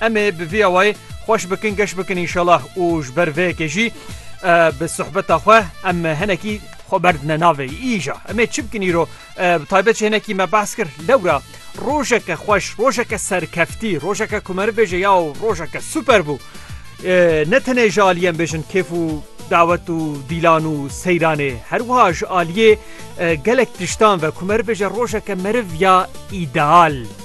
Em ê bi vî awayî xweş bikin geş bikin înşallah û ji ber vê yekê jî bi sohbeta xwe em hinekî xwe berdine navê îja em ê çi bikin îro bi taybet jî hinekî me behs kir lewra rojeke xweş rojeke serkeftî rojeke ku me bibêje ya rojeke super bû ne tenê ji aliyê em bêjin kêf û dawet û dîlan û seyranê her wiha ji aliyê gelek tiştan ve ku me bibêje rojeke meriv ya îdeal.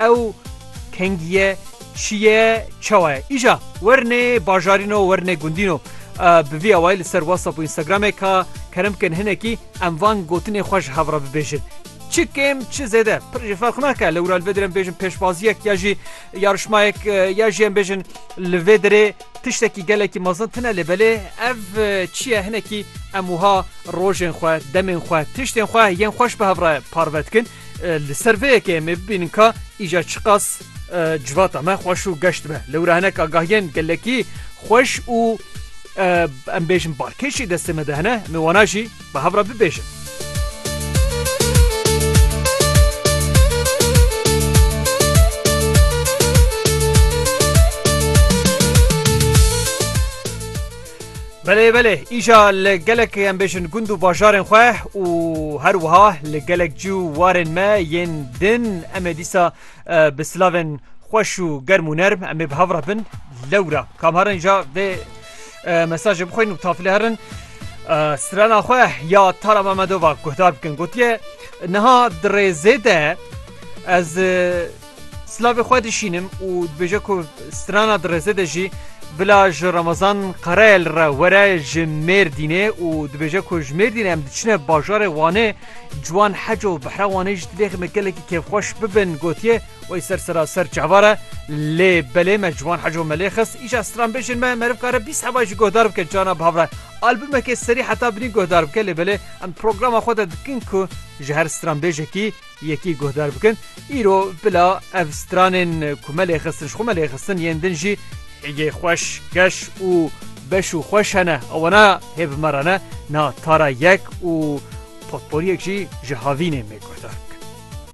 Ew kengiye şiye çawa ye? Îja wernê bajarîno wernê gundîno. Bi vî awayî li ser WhatsApp û Instagramê ka kerem bikin hinekî em van gotinê xwe ji hev re bibêjin. Çi kêm çi zêde pir jî ferq nake lewra li vê derê em bêjin pêşbaziyek ya jî yarişmayek ya jî em bêjin li vê derê tiştekî gelekî mezin tune lê belê ev çi ye hinekî em wiha rojên xwe, demên xwe, tiştên xwe yên xweş bi hev re parve dikin. Li ser vê yekê em ê bibînin ka îca çiqas civata me xweş û geşt be. Lewra hinek agahiyên gelekî xweş û em bêjin barkêşî destê me de hene, em ê wana jî bi hev re bibêjin. Belê belê îşa li gelek em bêjin gund û bajarên xwe û her wiha li gelek cî û warên me yên din em ê dîsa bi silavên xweş û germ û nerm em ê bi hev re bin lewra kam herin ja vê mesajê bixwîn û tafilê herin strana xwe ya Tara Memedova guhdar bikin gotiye niha di rêzê de ez Silavê xwe dişînim û dibêje ku strana di rêzê de jî bila ji Ramazan Karayel re were ji Mêrdînê û dibêje ku ji Mêrdînê em diçine bajarê Wanê ciwan hec û behra Wanê jî divê me gelekî kêfxweş bibin gotiye wey ser sera ser çavar e lê belê me ciwan hec û me lê xist îşa stranbêjên me meriv kare bîst hevay jî guhdar bike cana bi hev re albumekê serî heta binî guhdar bike lê belê em programa xwe de dikin ku ji her stranbêjekî Yekî guhdar bikin, îro bila ev stranên ku me lê xistin ji xwe me lê xistin yên din jî hêgê xweş, keş û beş û xweş hene. Ewana hê bi me re ne, na tara yek û potporiyek jî ji havînên me guhdar bikin.